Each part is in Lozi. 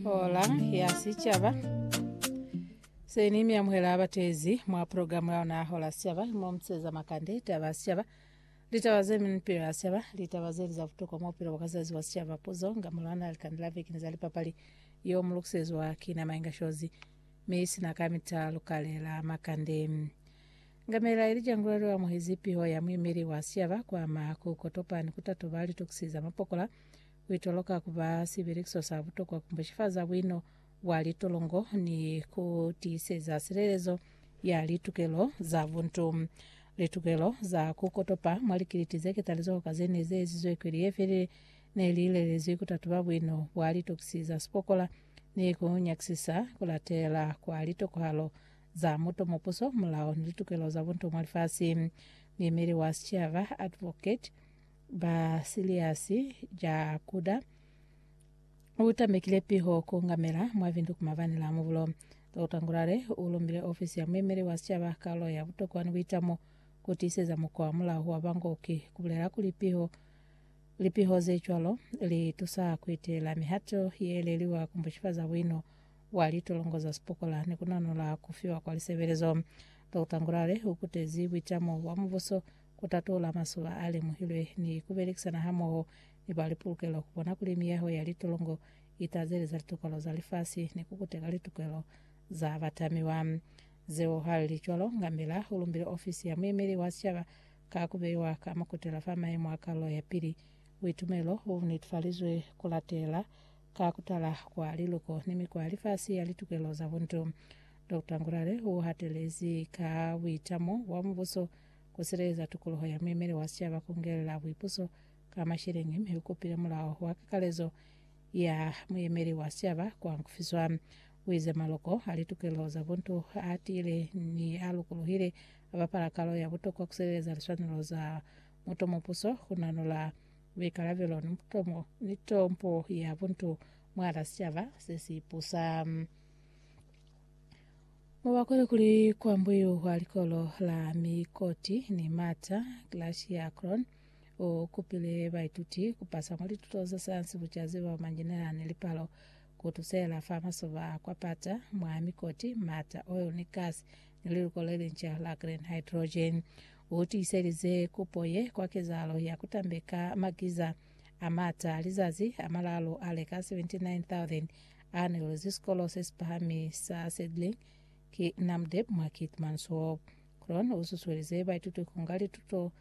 Hola ya Sicaba. Se ni mi amuhela abatezi mwa program ya ona Hola ya Sicaba, mo museza makande, taba ya sicaba, litaba ze mi ni pilo ya sicaba, litaba zeli za butokwa mwa bupilo bwa kazazi wa sicaba, puzo, ngamolo ana likande la veki ni za lipapali, yo mu lukisezwa ki na Mainga Shozi, mi sina ka mita lukalela makande. Ngamela Elija Ngulwelo amuhezi piho ya muimeli wa sicaba kwa makuko topani kutatoba litokisi za mapokola ku itoloka ku ba sibelekiso sa butokwa ku mbushifaza buino bwa litolongo ni ku tiiseza silelezo ya litukelo za buntu. Litukelo za ku kotopa mwa likiliti ze ketalizoho ka ze ne ze ezizwe kweli ye felile ne li lelezwi ku tatuba buino bwa litokisi za sipokola ni ku nyakisisa ku latela kwa litokohalo za muto, mupuso, mulao ni litukelo za buntu mwa lifasi. Muimeli wa sicaba, Adv. ba siliasi ja kuda u tambekile piho ku ngamela mwa bintu ku mabani la mubulo. Dr. Ngulale u lumbile ofisi ya muemeli wa sicaba kalulo ya butokwa ni buitamo ku tiiseza mukwa wa mulaho wa bangoki, ku bulela kuli piho lipiho ze cwalo li tusa ku iteela mihato ye leliwa ku mbushifaza buino bwa litolongo za sipokola ni ku nanola ku fiwa kwa lisebelezo. Dr. Ngulale u kutezi buitamo bwa mubuso ku tatula mazuba a lemuhilwe ni ku belekisana hamoho ni ba lipolokelo ku bona kuli miyaho ya litolongo i tazeleza litukelo za lifasi ni ku kuteka litukelo za batamiwa. Zeo ha li li cwalo, Ngamela u lumbile ofisi ya muemeli wa sicaba ka ku beiwa ka makutela fa mayemo a kalulo ya pili. Buitumelo bu netefalizwe ku latela ka ku tala kwa liluko ni mikwa ya lifasi ya litukelo za buntu. Doctor Ngurare u hatelezi ka buitamo bwa mubuso ku sileleza tukuluho ya muemeli wa sicaba ku ngelela buipuso ka masheleñi mi u kupile mulao wa kakalezo ya muemeli wa sicaba ku hankufiswa. U ize maloko a litukelelo za buntu a tiile ni a lukuluhile a bapala kalo ya butokwa ku sileleza liswanelo za mutomupuso, ku nanula buikalabelo ni tompo ya buntu mwahala sicaba se si pusa. Mubakwele kuli kwambuyu kwa likolo la Mikoti ni Mata, Glacier Cron, u kupile baituti ku pasa mwa lituto za sayansi, bucazi bwa manjinela ni lipalo ku tusela fa masoba a kwa pata mwa Mikoti, Mata, oil ni gas ni liluko le linca la green hydrogen. U tiiselize kupo ye kwa kezahalo ya ku tambeka magiza. a mata lizazi a malaalu a leka 79,000 a nelwezi sikolo se si pahami sa Sedling ki Namdeb mwa Keetmanshoop. Kroon u susuelize baituti ku nga lituto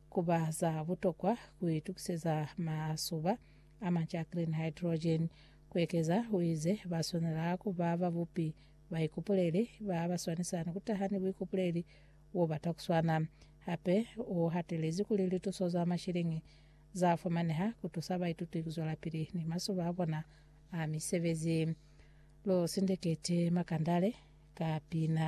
ku ba za butokwa ku itukiseza masuba a manca a clean hydrogen. Ku ekeza, u ize ba swanela ku ba babupi ba ikupuleli ba ba swanisani ku taha ni buikupuleli bo bata ku swana. Hape u hatelezi kuli lituso za mashiliñi za fumaneha ku tusa baituti ku zwelapili ni mazuba a bona a misebezi. Lu sindeketi makandale ka pina.